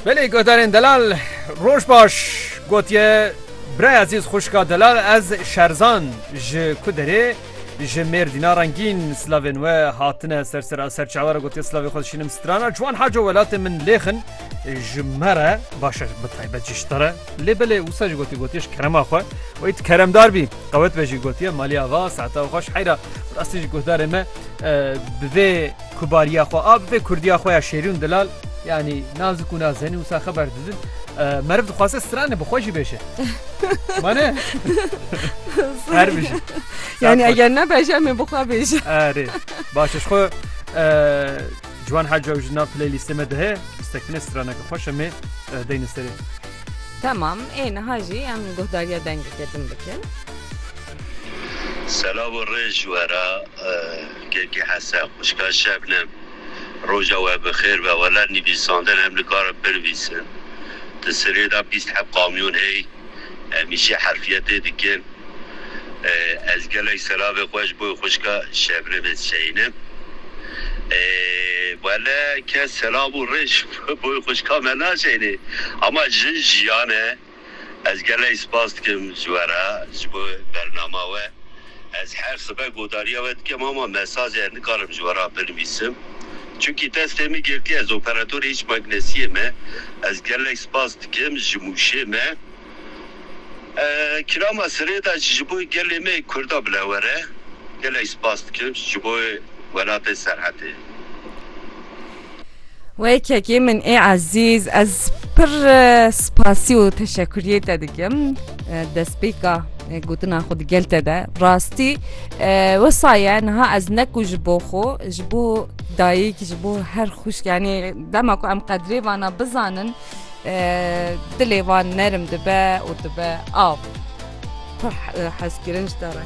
Belê guhdarên delal roj baş gotiye Birayê ezîz xwişka delal ez şerzan ji ku derê ji mêrdîna rengîn silavên we hatine ser sera serçawa re gotiye silavê xwe dişînim strana ciwan haco welatê min lêxin ji me re başe bi taybet ji te re lê belê wisa jî gotiye gotiye ji kerema xwe wê tu keremdar bî qewet be jî gotiye malî ava saeta xweş heyra rastî ji guhdarê me bi vê Ku bariya xwe a bibe kurdiya xwe ya şêrûn dilal yanî nazik û nazenî wisa xeber didin. Meriv dixwaze strane bi xwe jî bêje. Mane Her bijî. Yani eger ne beje em ê bi xwe bêje. Erê baş ji xwe Ciwan Heca ji nav playlîstê me dihe stekine straneke xweş em ê deyne serê. Tamam ê niha jî em guhdariya dengê kedin bikin. Selav û rê ji we re Kekê Hese, xwişka Şebnem, Roja we bi xêr be, wele nivîsandin em nikarin binivîsin. Di Sirê de bîst heb kamyon hey, em îşê herfiyetê dikin. Ez gelek selavê xwe ji bo xwişka Şebnemê dişeyinim. Wele kes selav û rê ji bo xwişka me naşeyinê. Ama jin jiyan e. Ez gelek spas dikim ji we re ji bo bernama we. Ez her sibe godariya we dikim ama mesajê nikarim ji we re binivîsim. Çunkî destê min girtiye ez operatorê hiç magnesiyê me. Ez gelek spas dikim ji mûşê me. Kirama sirê de jî ji bo gelê me yê kurda bile were. Gelek spas dikim ji bo welatê Serhetê. Wekekî min ê ezîz ez pir spasî û teşekuriyê te dikim destpêka gotina xwe digel te de rastî we saye niha ez neku ji bo xwe ji bo dayik ji bo her xuşk yanî dema ku em qedrê vana bizanin dilê van nerim dibe û dibe av pir hezkirin ji te re.